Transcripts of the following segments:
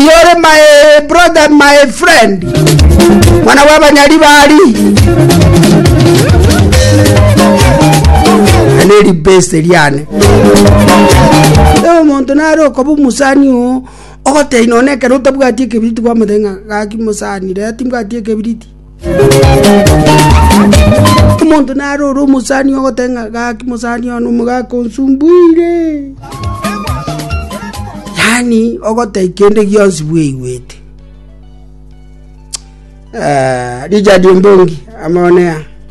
Iyore my brother my friend mwana w'abanyari bari ane ribese riane Ewe omonto nare okoba omusani oo ogotei nonekero otabwati ekebiriti gwamoteba ng'a gaki mosani rera timbwati ekebiriti omonto naro ore omosani ogote ng'a gaki mosani one omogaka onsumbuire yaani ogote kende gionsi bwaigwete Richard Ombongi amonea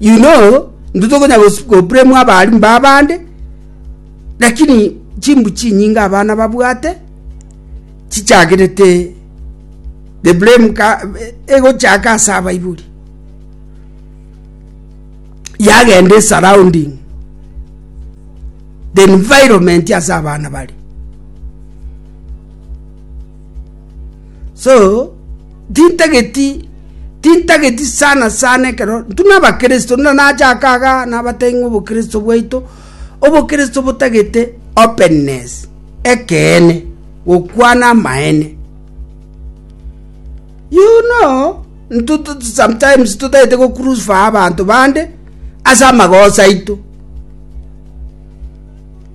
You know, intwe tokonya gos- goblamwa abarimu ba abande, lakini chimbu chinyinge abana babwate chichagerete the blame ka egochaka ase abaibori. Yagenda esurrounding, the environment ase abana bare. So, tintageti tintageti sana sana ekero ntuna abakristo nuna nache akaga nabatebia ng'a obokristo bwaito obokristo botagete openness ekeene gokwana amaene you know ntutu sometimes totagete gocrusify abanto bande ase amagoso aito.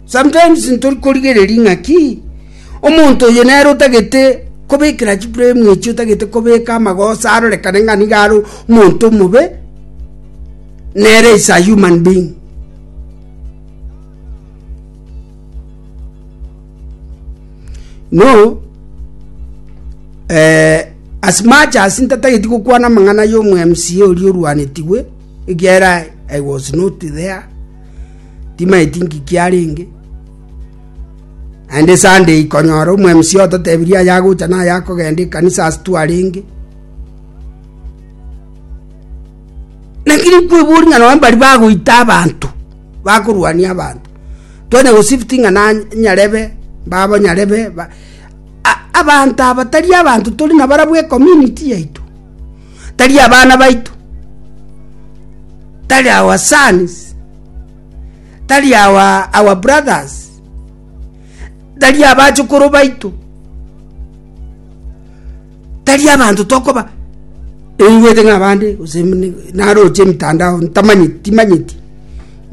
Sometimes ntori korigereria ng'a ki, omonto oyo nere otagete kobekera chiframe echi, otagete kobeka amagoso arorekane ng'a nigo are omonto omobe, nere is a human being. No, eh, as much as ntatageti gokwana amang'ana y'omo MCA oria orwanetigwe, ekiagera I was not there, timaeti nki kiarenge naende sande eye konyora omo mca ototebirie ayagocha na ayakogenda ekanisa ase twarenge lakini nkwebori ng'a nonye mbari bagoita abanto bakorwania abanto twanya gosifti ng'a nany nyarebe babo nyarebe ba a- abanto aba tari abanto tori nabarabwo ecommunity yaito. Tari abana baito, tari our sons, tari our, our brothers, tari abachukuru baito, tari abanto tokoba eingwete ng'a abande gose mne- naroche emitandao ntamanyeti timanyeti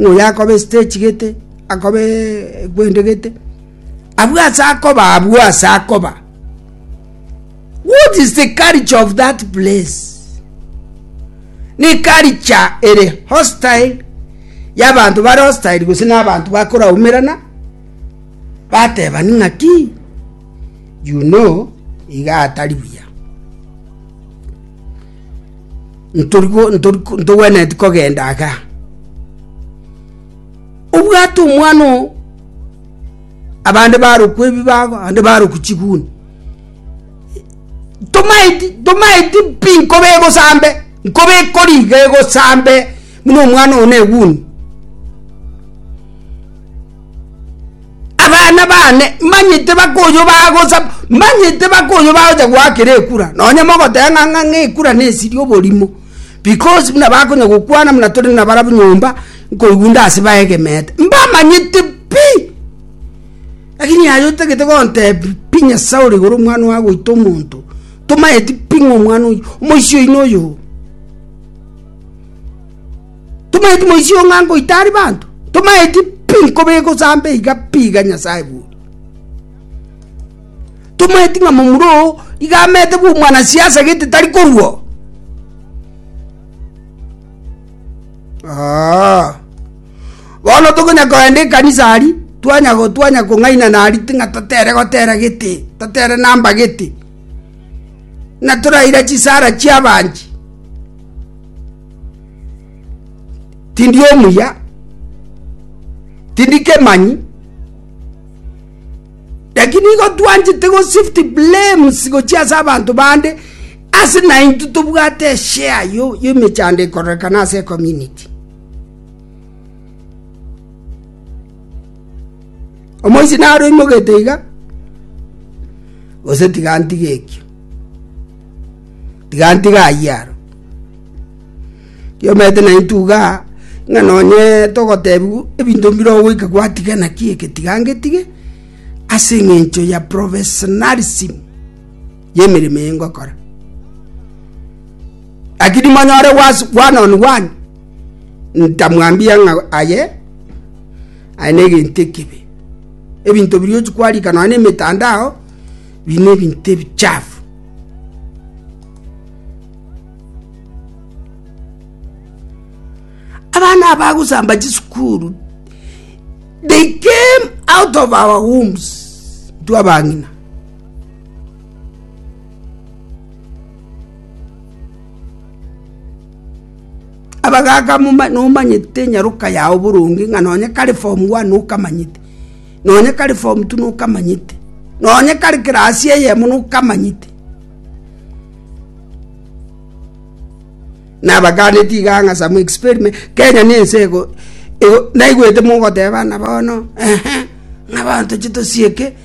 ng'a oyo akoba estage gete akobe gwende gete abwo ase akoba abwo ase akoba What is the culture of that place? Ni culture ere hostile y'abanto bare hostile gose n'abanto bakoraumerana batebani ng'aki you know iga atari buya Ntorigo- ntorigo- ntogwenereti kogenda aga obwate omwana oo abande barokwa ebibago abande barokwa chiguni Tomaeti tomaeti pi nkobe egosambe nkobe ekoriga egosambe buna omwana one eguni abana bane manyete bakoyo bagosa manyete bakoyo bagocha goakera ekura nonye mogoteba ng'a ng'a ng'a ekura na esiri oborimo because buna bakonya gokwana buna tore nabarabwo nyomba nkoigwa nde ase baegemete mbamanyete pi. Lakini aye otagete gontebiia Saulo igoro omwana oye agoita omonto, tomaeti pi ng'a omwana oyio omoisia oino oyo. Tomaeti moisia oyo ng'a ngoita aria banto? Tomaeti pi nkobe egosamba iga pi iga Nyasae buna? Tomaeti ng'a momura oo iga amete bwa omwanasiasa gete tari korua oo? Aah. Bono tokonya kogenda ekanisa aria, twanya kong'ainana aria ng'a totere gotera gete, totere namba gete, ng'a toraire chisara chi'abanchi. Tindi omuya, tindi kemanyi, lakini nigo twanchete gosift blames gochia ase abanto bande ase naintwe tobwate eshare y'emechando ekorekana ase ecommunity. Omoichi naro oimogete iga, gose tiga ntige ekio, tiga ntige ayio aro. Kiomanyete na intwe igaa, ng'a nonye togotebiwa ebinto mbire ogoika gwatiga naki eke tiga ngetige, ase eng'encho ya professionalism. y'emeremo eye ngokora. Lakini monyore was one on one, ntamwambia ng'a aye aye negento ekibe. Ebinto biria ochi kwarika nonya nemetandao biri nebinto ebichafu. Abana abagosamba chisukuru they came out of our wombs intwe abang'ina Abagaaka nomanyete enyaroka yao boronge, ng'a nonye kare form one nokamanyete, nonye kare form two nokamanyete, nonye kare class eyemo nokamanyete. Nabaganeti iga ng'a some experiment, Kenya ne ense ego, naigwete mogoteba buna bono, ehe, ng'a abanto tochia tosieke.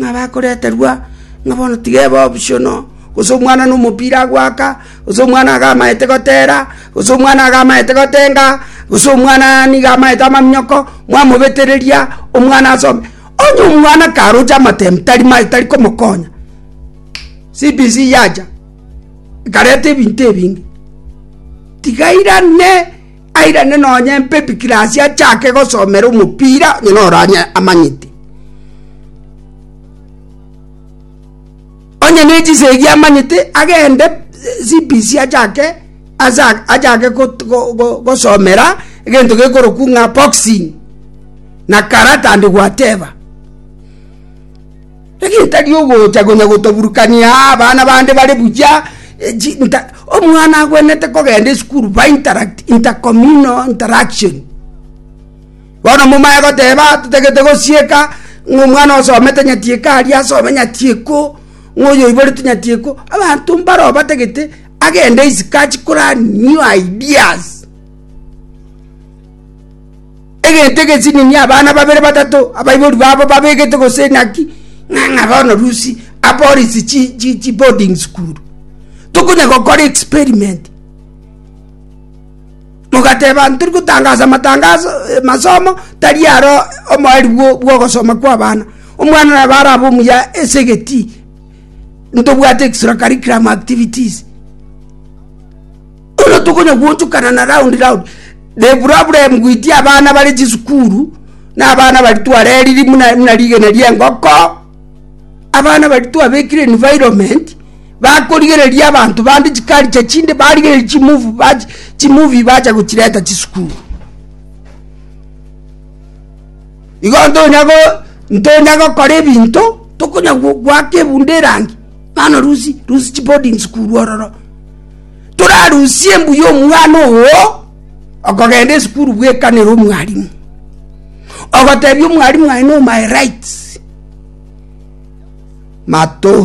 ng'a bakoreterwa ng'a bono tiga ebe optional, gose omwana na omopira agoaka, gose omwana iga amaete gotera, gose omwana iga amaete gotenga, gose omwana nigo amaete amaminyoko, mwamobetereria omwana asome. Onye omwana karoche amatembe tari maye tari komokonya, CBC yacha ekareta ebinto ebinge, tiga airane. Airane nonye empepi kirasi achake gosomera omopira onye noro amanyete. Onye ne chisegi amanyete agende CBC achake achake gosomera egento gekorokwu ng'a boxing na karate and whatever. Egetari ogocha konya gotaburukania abana bande bare buya inter Omwana agwenerete kogenda esukuru by interact intercommunal interaction. Bono momanye goteba totagete gosieka ng'a omwana osomete nyati eke aria asome nyati eko, ng'a oyo oiborete nyati eko, abanto mbaro batagete agende isiko achi kolearn new ideas. Egento egesinini abana babere batato abaibori babo babegete gose naki ng'a ng'a bono rusi apolisi chi chi chi boarding school tokonya gokora experiment mogateba ntori gotangasa amatangaso masomo tari aro omoeri bwo bwogosoma kwa abana omwana nabo arabe omuya ase egetii ntobwate extra curriculum activities. Bono tokonya gwochokana na round round, the problem with abana bare chisukuru, na abana baria twareririe buna buna rigena ria engoko, abana baria twabekire environment, bakorigereria abanto bande chiculture chinde, barigereria chimovu bachi chimovie bacha gochireta chisukuru. Igo ntonya go ntonya gokora ebinto, tokonya gwa gwaka ebunto erangi, bono rusi rusi chiboarding school ororo. torarusie mbuya omwana oo okogenda esukuru bwekanera omwalimu ogotebia omwalimu aye no my rights mato